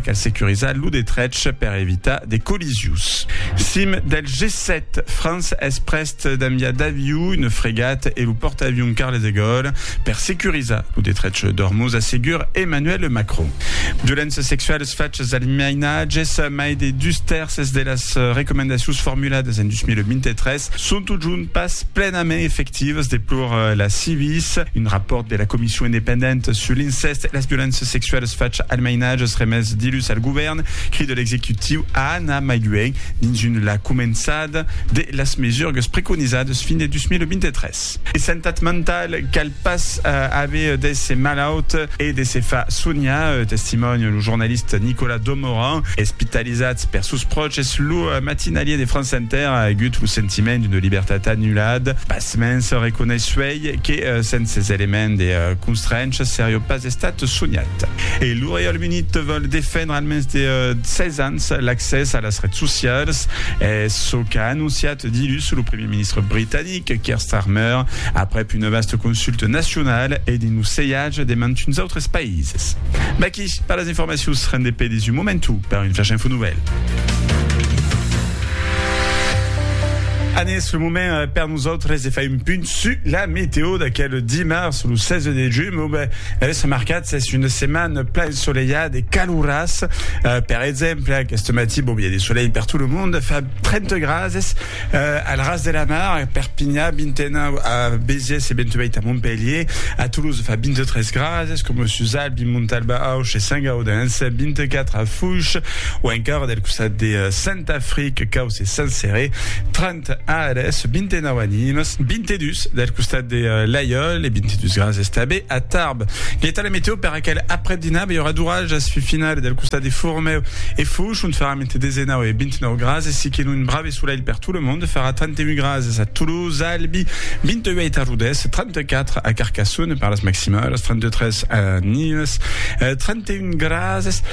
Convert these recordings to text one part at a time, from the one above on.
Cal securizar lo detrech per evitar de collisions. Cim del G7, França es prest d'enviar d'aviu, una fregat e lo pòrtaavion Charles de Gaulle per securizar lo detrech d'Ormuz, assegur Emmanuel Macron. Violéncias sexualas, fachas al mainatges, mai de dus tèrces de las recomendacions formuladas en 2023 son totjorn pas plenament efectivas, deplora la Civis. Un rapòrt de la Comission independenta sur l'incèst e las violéncias sexualas Fach almainatges remés dilhus al govèrn, cride l'executiu a anar mai luènh dins un la començada de las mesurgues preconizadas fin de 2023. E santat mentau, cal pas aver d'èsser malaut e de se far sonhar, testimònia lo jornalista Nicolas Domoran. Espitalizat per sos pròches, lo matinalier de France Inter a agut lo sentiment d'una libertat anulada. Pasmens, reconeissuèi que sens es elements de constrencha seriá pas estat Estat sonhat. E lo Reialme Unit vòl defendre al mens de 16 ans l'accès a las rets socials. Es çò qu'a anonciat dilhus lo primièr ministre britanic, Keir Starmer, aprèp una vasta consulta nacionala e dins lo sejatge de mantuns autres païses. Vaqui per las informacions rendepedis un momentu per un flash info novèl. An es lo moment per. Nosautres se fai un punt su la meteo d'aquel dimars lo 16 de junh, bon ben es remarcat s'es una setmana plan ensolelhada e calorasa, per exemple aquest matí bon ben i a de solelh per tot lo monde, fa 30 grads es al ras de la mar a Perpinha, 29 a Béziers e 28 a Montpelhier, a Toulouse fa 23 grads es coma sus Albi, Montalban, Auch e Sant Gaudens, 24 a Fouish o encara del costat de Saint Afric, Caus e Saint Céré, 30. Ant ares 29 animes, 22 del costat de Laiòl e 22 graus estabe a Tarbes. Quieta la meteo per aquel aprèp-dinar, bèi ora d'orajas fin finale del costat de Fourmeu e Fouch, ont faràn entre 19 e 29 graus, aicí que un brave solelh per tot lo monde, farà 31 graus a Toulouse, Albi, 28 a Rodés, 34 a Carcassonne per las maximalas, 33 a Nimes, 31 graus.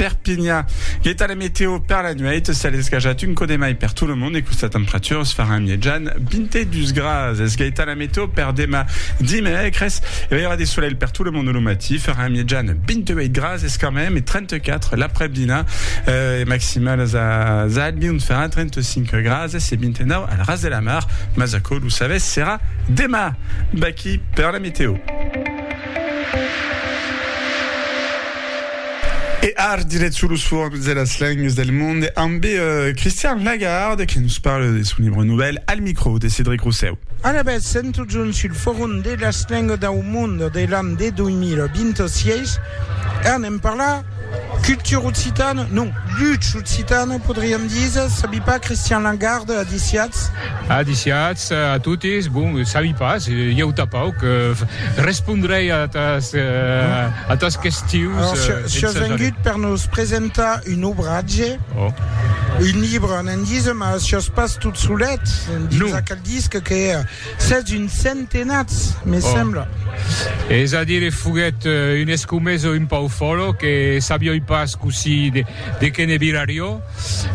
Perpinha. L'eta la meteo per la nueit s'a lesgajat un cò de mai per tot lo mond e questa temperaturas faràn mièjan 22 grads. Es gaita la meteo per demà dimècres. I aurà de solelh per tot lo mond lo matí, farà mièjan 28 grads es carmèm e 34 l'aprèpdina. Es maximalas a Zalbirn farà 35 grads e 29 al ras de la mar, mas aquò lo sabètz serà demà. Baquí per la meteo. E ar diret sur los formes de las lengues del monde amb Christian Lagarde que nos parle de son libre novèl al micro de Cedric Rossèu. Alavetz, sèm totjorn sul Forum de las lengues dau monde de l'an de 2026 e anem parlar Cultura occitana, non, lucha occitana, podriam díser, sabi pas, Christian Langarde, adiciatz. Adiciatz a totes, bon, sabi pas, ieu tapauc, respondrei a tas, a tas questions. Alors, si, si as vengut per nos presentar un obratge, un libre, ne'n díser, mas si as pas tot solet, dins aquel disc que. Sètz un centenats, me oh. sembla. Es a dire, foguèt euh, un escomeso un pau fòlo que sabioi pas così de, de que ne virario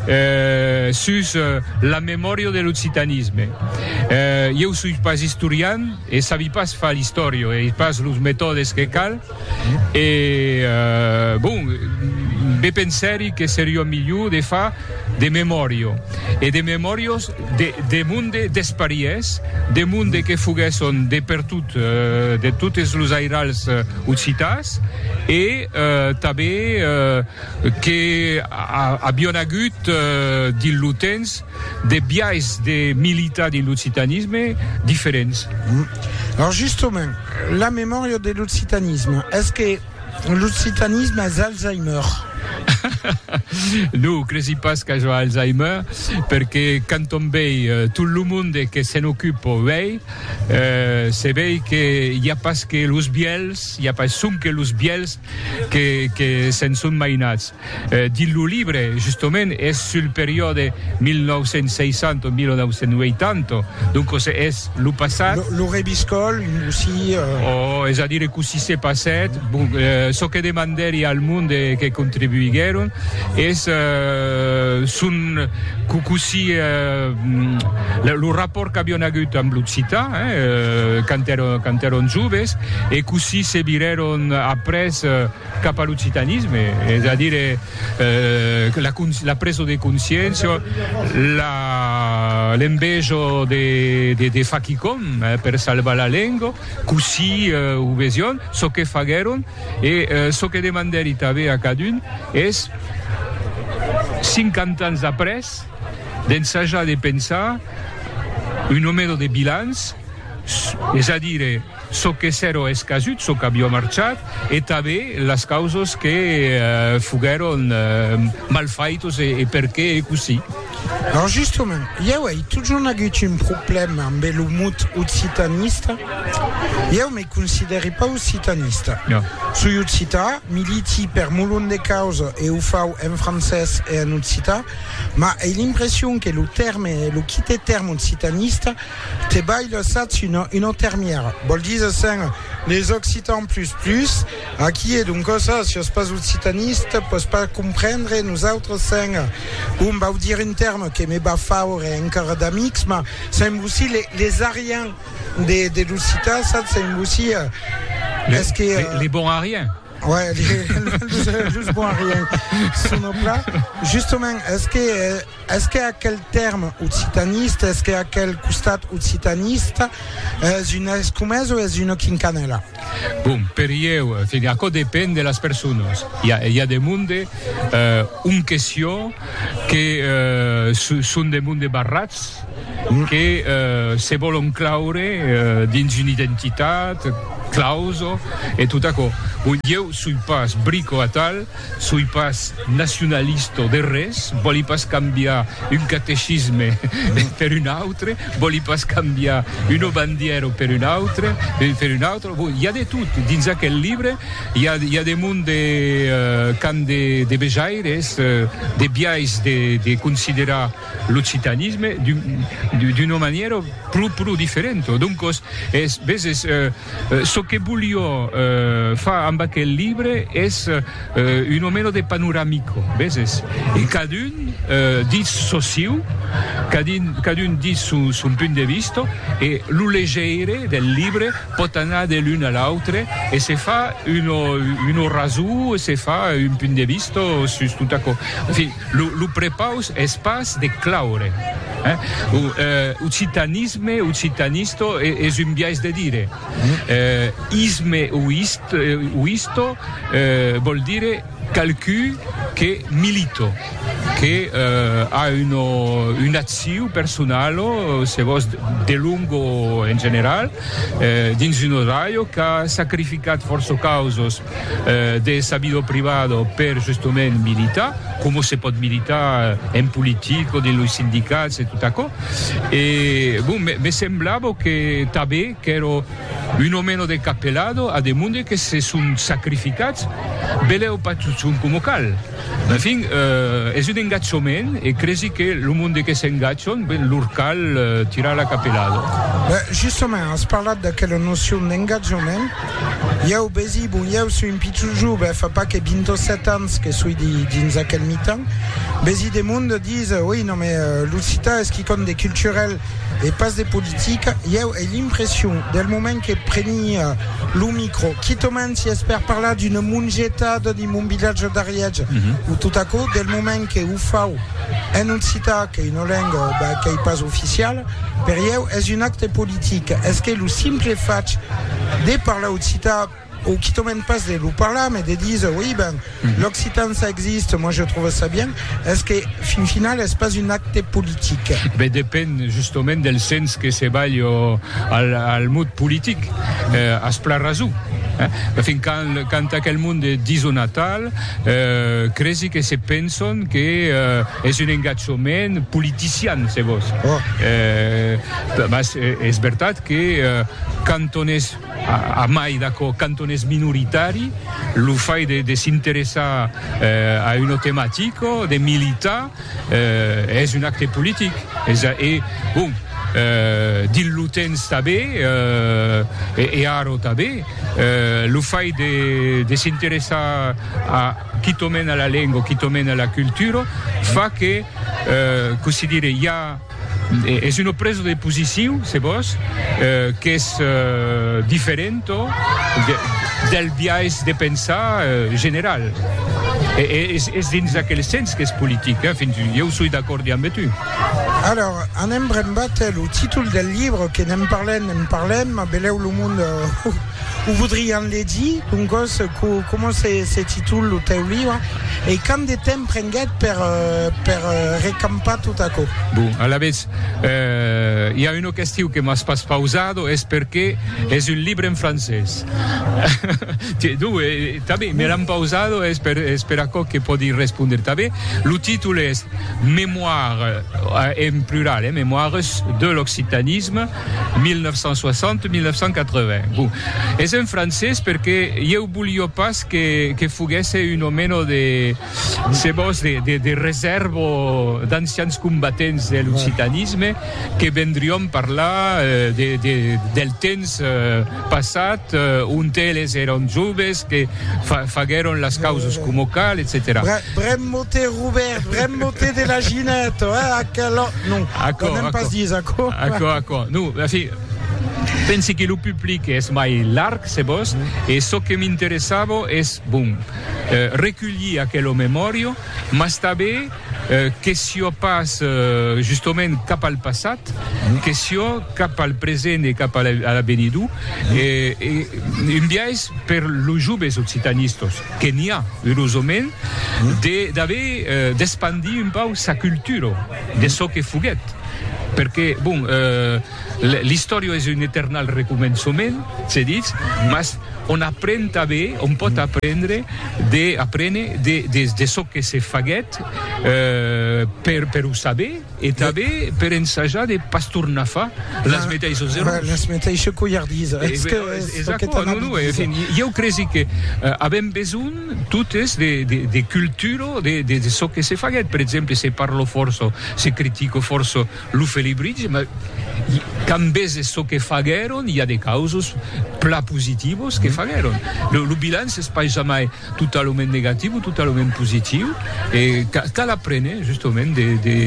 euh, sus euh, la memòria de l'occitanisme. Euh, ieu soi pas historian e sabi pas fa l'istòria e pas los metòdes que cal, e bon be pensèri que seriá milhor de far de memòria e de memòrias de monde despariés, de monde que foguèsson de pertot de totes los airals occitans e tanben que avián agut dins lo temps De biais de militar dins l'occitanisme diferents. Lors justement, la memòria de l'occitanisme, es que l'occitanisme es Alzheimer? Non, cresi pas qu'aja Alzheimer, perque quand on vei tot lo monde que se'n ocupa uèi, se vei que i a pas que los bièlhs, i a pas sonque los bièlhs, que se'n son mainats. Dins lo libre, justement, es sul periòde 1960-1980, doncos es lo passat. Lo reviscòl, cossí? Oh, es a dire cossí se passèt. Bon, çò que demandèri al monde que contribuiguèron es son cossí lo rapòrt qu'avián agut amb l'occitan, hein, quand èron joves. E cossí se virèron après cap a l'occitanisme, es a dire la presa de consciéncia, l'enveja de far quicòm per salvar la lenga, cossí o vesián, çò que faguèron e çò que demandèri tanben a cadun es, cinquanta ans après, d'ensajar de pensar una mena de bilanç, es a dire, çò que s'èro escasut, çò qu'avió marchat e tanben las causas que foguèron mal faitas e perqué ei cossí. Lors justament, ieu ei totjorn agut un problèma ambe lo mot occitanista. Ieu me considèri pas occitanista. Soi occità, militi per molon de causa e o fau en francés e en occità, mas ei l'impression que lo tèrme e lo quite tèrme occitanista Te balh lassatz una una termièra, vòl díser sen les occitans plus plus, aquí e donc ça, si sos pas occitaniste pòs pas comprendre nosautres sen bon vau dire un terme que me va faure encara d'amics mas sen vossi les les ariens de de l'occitan satz sen vossi es que les bons ariens Ouais, just bon rien. Sono plat. Justement, est-ce que, est-ce que aquel terme occitaniste, est-ce que aquel costat occitaniste es une escomesa ou es une quincanela? Bon, per ieu, a quoi dépend de las personas. Il y a, il y a des monde, euh, une question que, euh, sont des monde barrats, que se vòlon claure dins una identitat, clauso, e tot aquò. Bon, ieu soi pas brico atal, soi pas nacionalista o de res, vòli pas cambiar un catecisme per un autre, vòli pas cambiar una bandièra per una autra, per una autra, bon, i a de tot dins aquel libre, i a, i a de mon de qu'an de, de vejaires, de biais de, de considerar. l'occitanisme d'una manièra pro pro diferenta. Doncos, es, veses, çò que volió far amb aquel libre es una mena de panoramico, veses, e cadun ditz çò siu, cadun cadun ditz son son punt de vista e lo legeire del libre pòt anar de l'un a l'autre e se far una una rasó e se far un punt de vista sus tot aquò. En fin. Lo prepaus es pas de claure. Occitanisme, occitanisto, es un biais de dire. Isme o isto vòl dire qualqu'un que milito, que a una acciu personalo, se vòs, de long o en general, dins un odraio qu'a sacrificat fòrça causos de sabidor privado per justement militar coma se pòt militar en politica o dins los sindicats e tot aquò e bon me semblava que tanben qu'èra un o meno de capelado a de monde que se son sacrificats belèu pas totjorn coma cal. En fin, es un engatjament e cresi que lo monde que s'engatjon, ben, lor cal tirar la capelada. Ben, justament, as parlat d'aquela nocion d'engatjament. Ieu, besi, bon, ieu soi un pichon jove, fa pas que 27 ans que soi dins aquel mitan, besi, de monde dise, oi, non, mais l'occitan es quicòm de culturel. e pas de politica, ieu ai l'impression del moment que preni lo micro, quitament si es per parlar d'una mongetada dins mon vilatge d'Arièch, o tot aquò, del moment que o fau en occitan, qu'ei una lenga qu'ei pas oficiala, per ieu es un acte politic. Es que lo simple fach de parlar occitan, O quitò mèm pas de lo parlar, mais de díser, oui, ben, l'occitan ça existe, moi je trouve ça bien, es que, fin final, es pas un acte politic. Ben, depend justament del sens que se balhe al, al mot politic. Eh, as plan rason. Eh, fin quand, quand aquel monde de díser natal, eh, cresi que se penson que, eh, es un engatjament politician, se vos. Oh. Eh, mas es vertat que, eh, quand on es A mai d'aquò, quand on es minoritari, lo fai de s'interessar a una tematica, de militar, es un acte politic. E, bon, dins lo temps tanben, e ara tanben, lo fai de s'interessar quitament a la lenga, quitament a la cultura, fa que, cossí dire, i a, Es una presa de posiciu, se vòs, qu'es diferenta del biais de pensar general. Es dins aquel sens qu'es politic, fins, ieu soi d'acòrd damb tu. Alors, anem brembat, lo títol del libre, que ne'n parlem, ne'n parlem, belèu lo monde. O vodrián legir, doncòs, coma se titula lo tèu libre e quant de temps prenguèt per recampar tot aquò? Bon, alavetz, i a una question que m'as pas pausada, es perqué es un libre en francés. Tanben, me l'an pausada, es per aquò que pòdi respondre tanben. Lo títol es Mémoires, en plural, eh, Mémoires de l'occitanisme. 1960-1980. Bon, es en francés perque ieu bolio pas que, que foguèsse un omeno de, se vos, de, de, de resèrva o d'ancians combatents de l'occitanisme que vendrión parlar eh, de, de, del temps eh, passat ont eles èron joves que faguèron las causas coma cal etcetèra Brem mote Robèrt brem mote de la ginèta eh aquela non Aquò aquò pas dits aquò aquò aquò non en fin pensi que lo public es mai larg se vos e çò que m'interessava es bon reculhir aquela memòria mas tanben Que siò pas justament cap al passat, que siò cap al present e cap a l'avenidor, un biais per los joves occitanistas, que n'i a, erosament, d'aver, d'espandir un pauc sa cultura de çò que foguèt. Perque, bon, l'istòria es un eternal recomençament, se ditz, mas, on apren tanben, on pòt aprendre de aprene de de de çò que se faguèt per per o saber e tanben per ensajar de pas tornar far las meteissas errors. Las meteissas coiardisas. Es que es aqueth anabis. Ieu cresi que avèm besonh totes de de de cultura de de de çò que se faguèt. Per exemple, se parlo fòrça, se critico fòrça. Lo Felibritge, ma quand veses çò que faguèron, i a de causos plan positivos que faguèron. Lo, lo bilanç es pas jamai totalament negatiu o totalament positiu, e ca, cal aprene justament de, de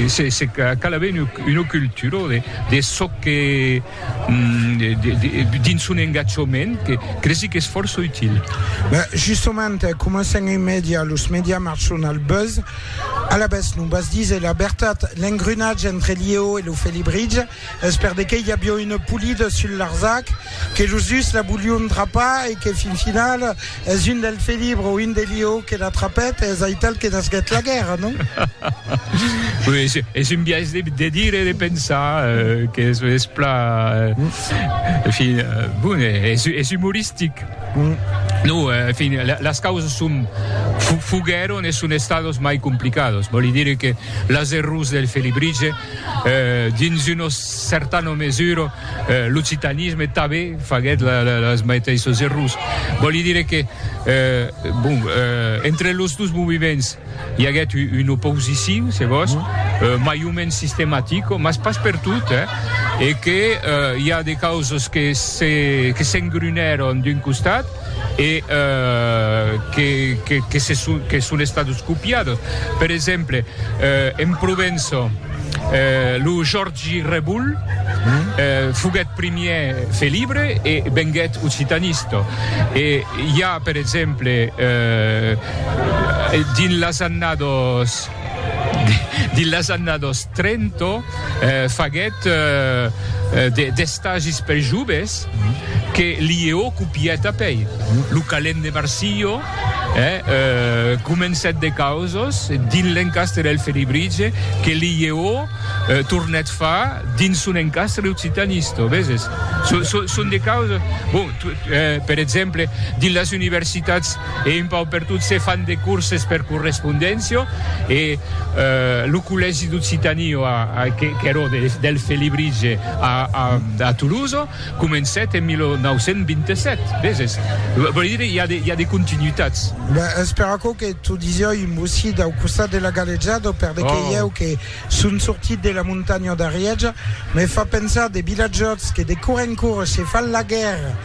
se, se, cal aver una, una cultura de, de çò que, dins son engatjament, que cresi qu'es fòrça util. Justament, comencen en mèdia, los mèdia marchon al buzz. Alavetz, non vas díser la vertat, l'engrenatge entre Liéo e lo Felibritge es per de qué i avió una polida sul Larzac, que los dus la volion drapar e que fin finala Es un del felibre o un de liò que l'atrapèt, es aital que nasquèt la guèrra, non? Oui, es, es un biais de, de dire e de pensar euh, que es, es pla... Euh, fi, euh, bon, es, es humoristic. Mm. No, euh, fin, la, las causas son fu, fugueron e son estados mai complicados. Voli dire que las errors del felibritge, euh, dins una certana mesura, L'occitanisme tabe faguet les maiteisses errors. Vòli dire que, bon, entre los dos moviments i aguèt una oposicion, se vos, mai o mens sistematica, mas pas pertot, e que i a de causes que s'engrunèron d'un costat, e que son estados copiados. Per exemple, en Provença, lo Jòrgi Rebull foguèt primièr felibre e venguèt occitanista. E i a, per exemple, dins las annadas. Dins las annadas 30 faguèt d'estagis per joves que Liéo copièt apèi. Lo calent de Marsilho comencèt de causas dins l'encastre del Felibritge que Liéo tornèt far dins son encastre occitanista, veses? Son de causas, bon, per exemple, dins las universitats, E un pauc per tot se fan de corses per correspondéncia e lo collègi d'Occitanie qu'èra del Felibritge a Toulouse comencèt en 1927, veses? Vòli dire i a de continuitats. Ben, es per aquò que t'o disiá un bocit au costat de la galejada, per de que ieu que son sortit de la montanha d'Arièja, me fa pensar de vilatjòts que de cor en cor se fan la guèrra.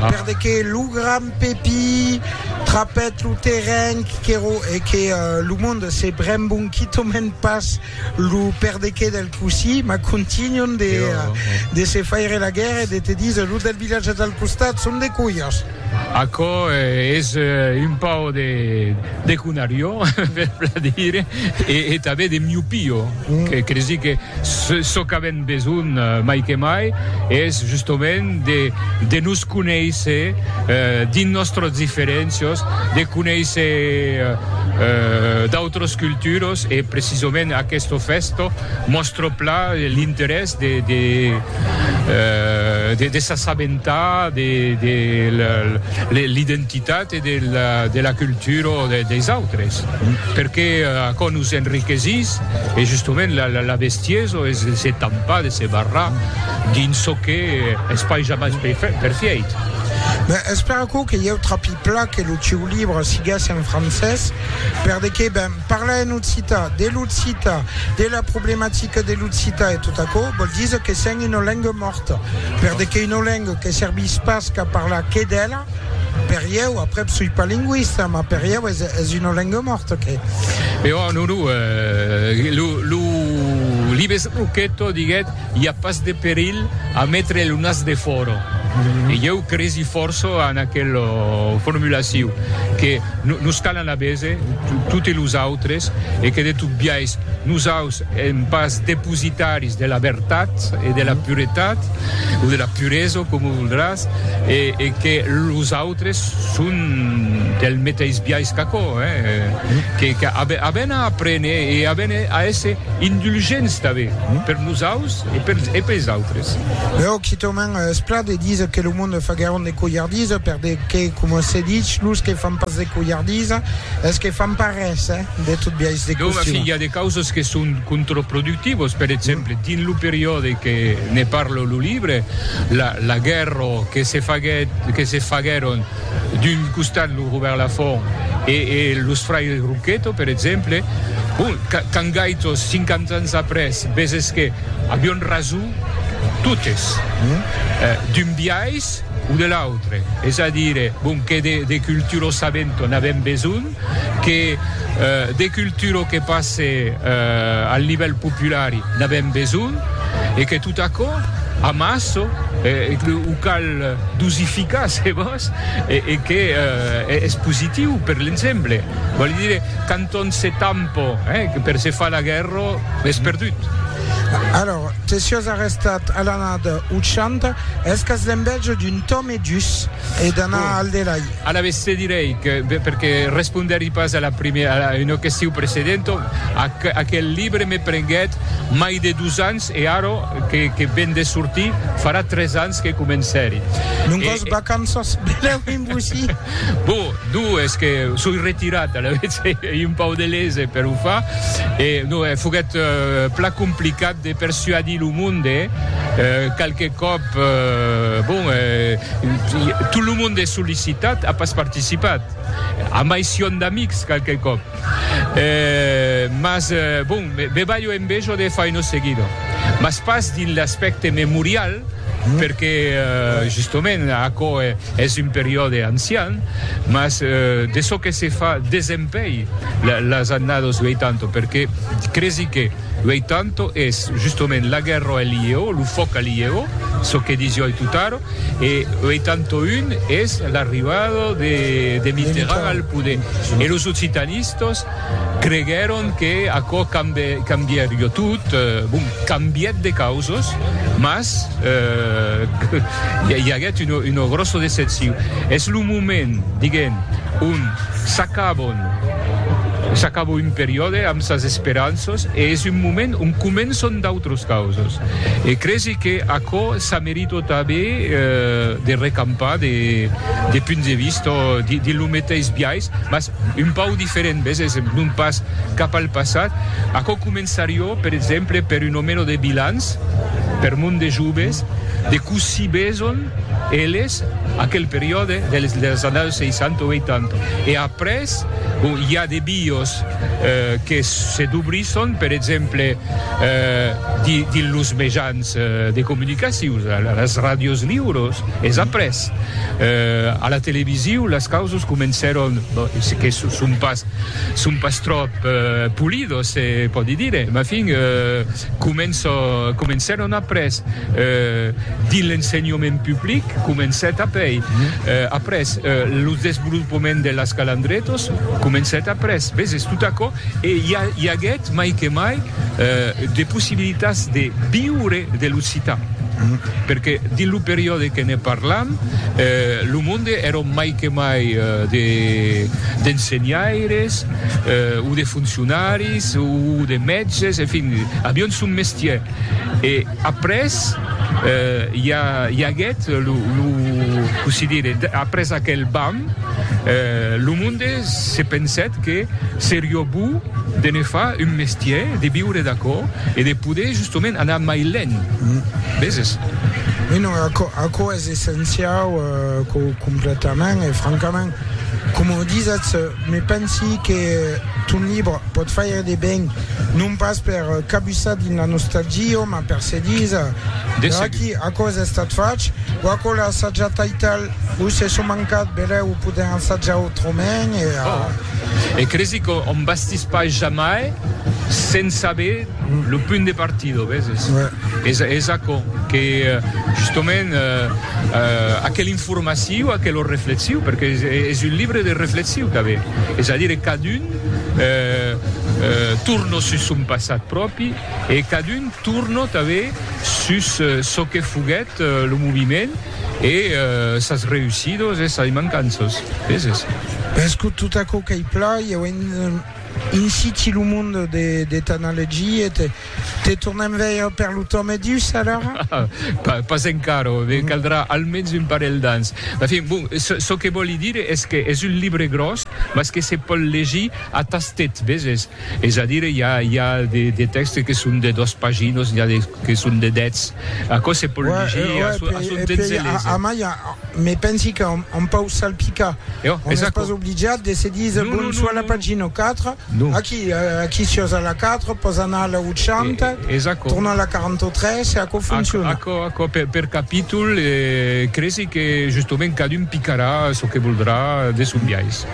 Per de que lo grand Pepi trapèt lo terren qu'èro e que lo monde se brembon quitament pas lo per de que del cossi, mas contunhon de de se faire la guèrra e de te díser los del vilatge del costat son de colhas. Aquò es un pauc de de conarió, per plan dire, e tanben de miopio. Cresi que çò qu'avèm besonh mai que mai es justament de nos conéisser dins nòstras diferéncias, de conéisser d'autras culturas e precisament aquesta fèsta mòstra plan l'interès de s'assabentar de l'identitat. de la cultura des autres perque aquò nos enriquesís e justement la bestiesa es de se tampar de se barrar dins çò que es pas jamai perfièit. Ben espèr aquò que ieu trapi pla que lo sieu libre siguesse en francés per de que ben parlar en occità de l'occità de la problematica de l'occità e tot aquò vòl díser que sèm una lenga mòrta per de que una lenga que servís pas qu'a parlar que d'ela Per ieu, aprèp soi pas lingüista, mas per ieu es, es una lenga mòrta, que. E ò, non, non, eh, lo, lo libes Roqueto diguèt, i a pas de perilh a metre lo nas de fòra. E ieu cresi fòrça en aquel formulaciu, que nos calan a bese, toti los autres, e que de tot biais, nosaus, Èm pas depositaris de la vertat e de la puretat, o de la puresa, coma voldràs, e que los autres son del meteis biais qu'aquò, que avèn a aprene e avèn a èsser indulgents tanben per nosaus e pels autres. Lèu quitament es plat de díser que lo monde fa gairament de colhardisa, perque, coma se dich, los que fan pas de colhardisa es que fan pas res. De tot biais de costum. Doma que i a de causas que son contraproductivas, per exemple, dins lo periòde que ne parla lo libre, la, la guèrra que se faguèt, que se faguèron d'un costat lo Robèrt Lafont e, e los fraires Rouqueto, per exemple, bon, quand gaitos, 50 ans après, veses que avián rason totes, d'un biais o de l'autre, es a dire, bon, que de, de cultura sabenta n'avèm besonh, que de cultura que passe al nivèl populari n'avèm besonh e que tot aquò amassa e que o cal dosificar se vòs e que es positiu per l'ensemble. Vòli dire, quand on se tampa per se far la guèrra, es perdut. Alòr, te siás arrestat a l'anada 80, es qu'as l'envèja d'un Tom e dus. e d'anar al delai. Alavetz te direi que, perque respondèri pas a la primièra, a una question precedenta, aquel libre me prenguèt mai de dus ans e ara que ven de sortir farà tres ans que comencèri. Non còs vacanças, benlèu en bocí. Bon, donc es que soi retirat, alavetz, ei un pauc de lese per o far e non, foguèt plan complicat. de persuadir lo monde qualque còp bon tot lo monde es sollicitat a pas participat amb aicion d'amics qualque còp mas bon me balho envejo de faino seguido mas pas dins l'aspècte memorial perque justament aquò es un periòde ancian mas de çò que se fa desempeir las annados 80 perque cresi que Uèi tanto es justament la guèrra al lieu, lo fòc al lieu, çò que disiò ai totaro, e uèi tanto un es l'arribada de Mitterrand al poder. E los occitanistas creguèron que aquò cambiarió tot, bon, cambièt de causas, mas i aguèt una gròssa decepcion. Es lo moment, diguem, ont s'acabon, s'acabo un periòde amb sas esperanças e es un moment ont començon d'autras causas. E cresi que aquò s'a merito tanben de recampar de punts de vista dins lo meteis biais, mas un pauc diferent, ves, es non pas cap al passat. Aquò començarió, per exemple, per un o meno de bilans per mon de joves, de cossí beson eles. Aquel periòde dels annaus 60 o 80. E après, bon, i a de bios que se dobrisson, per exemple, dins los mejans de comunicacion, las ràdios liuros, es après, a la televisiu, las causas comencèron, que son pas tròp polidos, se pòdi dire, mafin, Començo, comencèron après dins l'ensenhament public, comencèt apei après lo desvolopament de las calandretos, comencèt après, veses tot aquò e i a, i aguèt mai que mai de possibilitats de viure de l'occitan, perque dins lo periòde que ne parlam lo monde èron mai que mai de d'ensenhaires, o de foncionaris o de mètges, en fin, avián son mestièr. E après i a, i aguèt lo, lo, cossí dire, après aquel bam, lo monde se pensèt que seriá bo de ne far un mestièr, de viure d'aquò e de poder justament anar mai lent, veses? Aquò es essenciau, completament, e francament Coma o disatz, me pensi que ton libre pòt faire de ben, non pas per cabussar dins la nostalgia, mas per se díser, D'aqui aquò es estat fach, o aquò l'a assajat taital, o se son mancat, belèu o podèm assajar autrament, e. Oh! E cresi qu'òm bastís pas jamai sens saber. Lo punt de partida, veses, es aquò, que justement aquela informaciu, aquela reflexiu, perque es un libre de reflexiu qu'a avè, es a dire cadun torna sus son passat pròpi e cadun torna tanben sus çò que foguèt lo moviment e sas reussidas e sas mancanças, veses. Mès tot aquò qu'ei plan, i auem. Insiti lo mond de t'analegia, te tornem veire per lo temps e dus alara? Pas encara, me caldrà almens un parelh d'ans. En fin, bon, çò que vòli dire es que es un libre gròs, mas que se pòl legir a tastet, veses? Es a dire, i a de tèxtes que son de dos paginos, n'i a que son de dètz. Aquò se pòl legir a son temps e lese. Amai, me pensi que on pau salpicar. Jo, on es pas obligat de se dir no, bon, no, soit no, la pagina 4, no. aquí, eh, aquí si a la 4, pos anar a la 80, e, tornar a la 43 e aquò funciona. Aquò, aquò, per, per capítol, eh, cresi que justament cadun picarà çò que voldrà de son biais.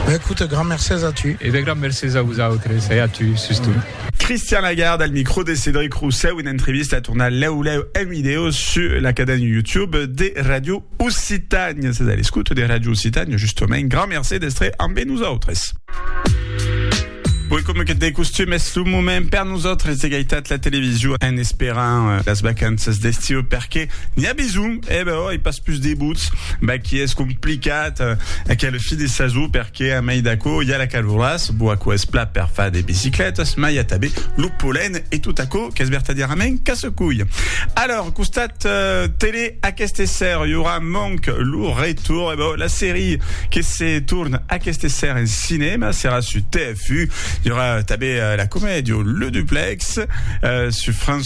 Bah, écoute, grand mercés a tu. E eh ben, grand mercés a vos autres e a tu, sustot. Christian Lagarde al micro de Cédric Roussèu, una entrevista a tornar lèu lèu en vidèo sus la caden YouTube de Radio Occitània. Sas a l'escouta de Radio Occitània, justament, grand mercé d'estre ambe nosautres. Oi coma que de costum es lo moment per nosautres de gaitat la television en esperant euh, las vacanças d'estiu perque n'hi a besoin, e eh ben, oi pas plus de buts, ben qui es complicat euh, aquel fin de sason perque Que a mai d'aquò i a la caloràs, bo aquò es plat per far de biciclètas, mai a tabé lo polen e tot aquò qu'es vertadièrament casse-cuilh. Alòr, costat tele aqueste esser i aurà manc lo retorn, e bo, la serie que se torn aqueste esser en cinèma serà su TF1, i aurà tabé la comèdia Le Duplex su France.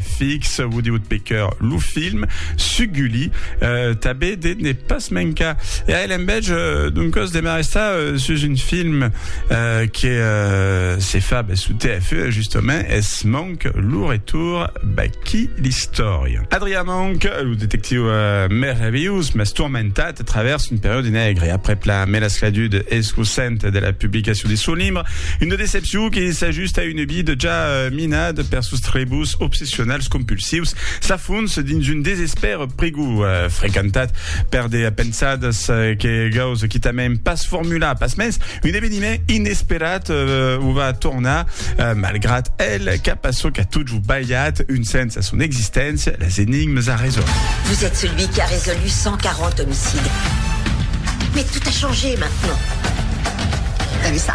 Fix, vos diut pe cœur lo film, su Gulli, euh, tabé de ne pas mencar. E a l'embètge, euh, d'un còs de m'arrestar euh, sus un film euh, que euh, se fa ben, su TF1, e justament es Monk, lo retour, baqui l'istòria. Adrià Monk, lo detectiu euh, merveillós, mas tourmentat a travèrs un periòde negre, aprèp la melascladud escosenta de la publicacion de son libre, una decepcion que s'ajusta a une vida ja euh, Minat per sos trebos obsessionals compulsius, sa fons dins un desespèr prigou, frequentat per de pensadas que gaus quitament pas formular. Pasmens, un eveniment inesperat o va tornar, malgrat el, cap a çò qu'a totjou balhat un sens a son existéncia, las enigmes a résoldre. Vous êtes celui qui a résolu 140 homicides. Mais tout a changé maintenant. T'as vu ça?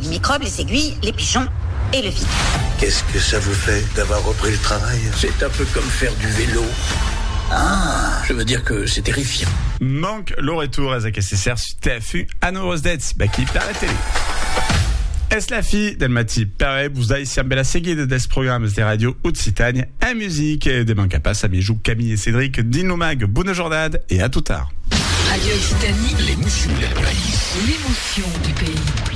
Les micròbes, les aiguilles, les pigeons et le vide. Qu'est-ce que ça vous fait d'avoir repris le travail? C'est un peu comme faire du vélo. Ah! Je veux dire que c'est terrifiant. Manc lo retour es aqueste ser sus tè fu anurós d'ètz bèqui per la tele. Es la fi del matí, perè vos daisiam bela seguida dels programas de Radio Occitània en music. De manca pas amijuc Camille e Cédric dins lo mag. Bona jornada e a tot tard. Radio Occitanie, l'émotion del país. L'émotion du pays.